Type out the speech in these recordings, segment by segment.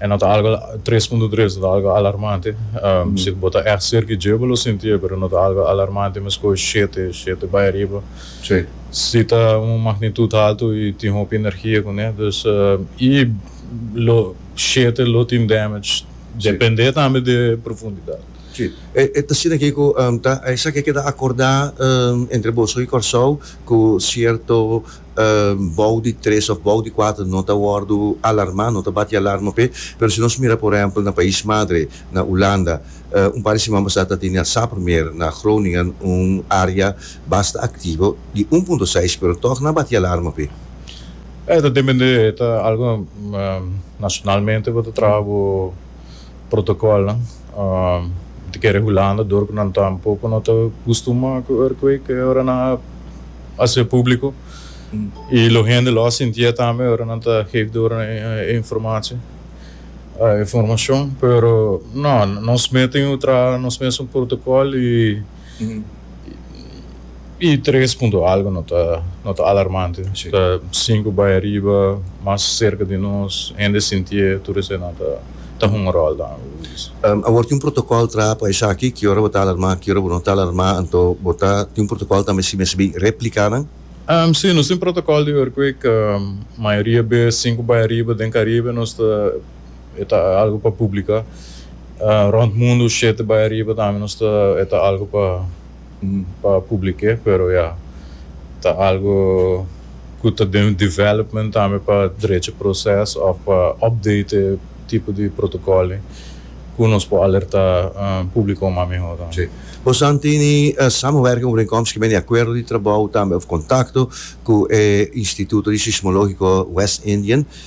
E no ta algo tres punto tres, no ta algo alarmante. Si bo ta echt serka di dje bo lo sintié, pero no ta algo alarmante mas ku shete, shete bai ariba. Si ta un magnitud haltu i tin hopi energia kuné, dus i lo shete lo tin damage dependé tambe di e profundidat. Si, e ta asina Kiko, ta esaki a keda akordá entre boso i Kòrsou ku sierto. bou di tres of bou di kuater no ta wordu alarma no ta bati alarma p'e pero si nos mira por ehempel na pais madre na Ulanda un par di siman pasá ta tene asá promé na Groningen un area basta aktivo di un punto seis pero tog na bati alarma p'e. E ta dependé e ta algo nacionalmente bo ta traha bo protocolnan ta kere hulando dor cu nan tampoco no ta custumba cu earthquake e ora nan a haci publico y lo hende lo a sinti e tambe e ora nan ta geef dor nan e informatie e informacion pero no nos meten traha nos mes un protocol y. I tres punto algo no ta no ta alarmante, ta sinku bai ariba, mas serka di nos, hende sintié, tur esei nan ta ta hunga ròl dan. Awor tin un protokòl traha pa esaki, ki ora bo ta alarmá, ki ora bo no ta alarmá, anto bo ta tin un protokòl tambe si mester bin repliká nan? Sí, nos tin un protokòl di earthquake, mayoria bes sinku bai ariba den Karibe nos ta. e ta algo pa publica rond mundo shete bay ariba tambe nos ta e ta algo pa pa publique pero ya ta algo cu ta den development tambe pa drecha proces of pa update e tipo di protocolnan cu nos por alerta publico mas mehor tambe. Si. Bosan tini samenwerking overeenkomst kimen di acuerdo di trabou tambe of contacto cu e Instituto di Sismologico West Indian?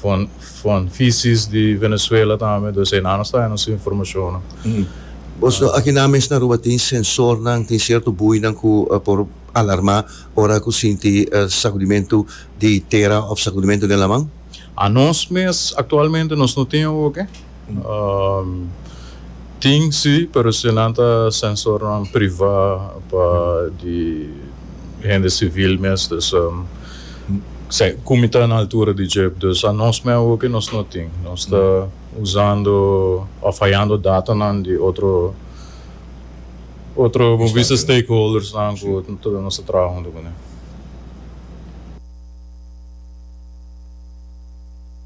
Fon fisis di Venezuela tambe dos enan nos ta hay nos informacionnan. Bos no aki nan mes na Aruba tin sensornan, tin cierto buinan cu por alarma ora cu sinti sacudimentu di tera of sacudimentu den laman? Anos mes actualmente nos no tin awo oke. Tin si, pero si nan ta sensornan privá pa di hende sivil mes, dus ku mi ta na altura di djep, dus anos mei awoke nos no tin. Nos ta usando òf hayando datanan di otro otro bon bisa stakeholdersnan ku nos ta traha huntu ku nan.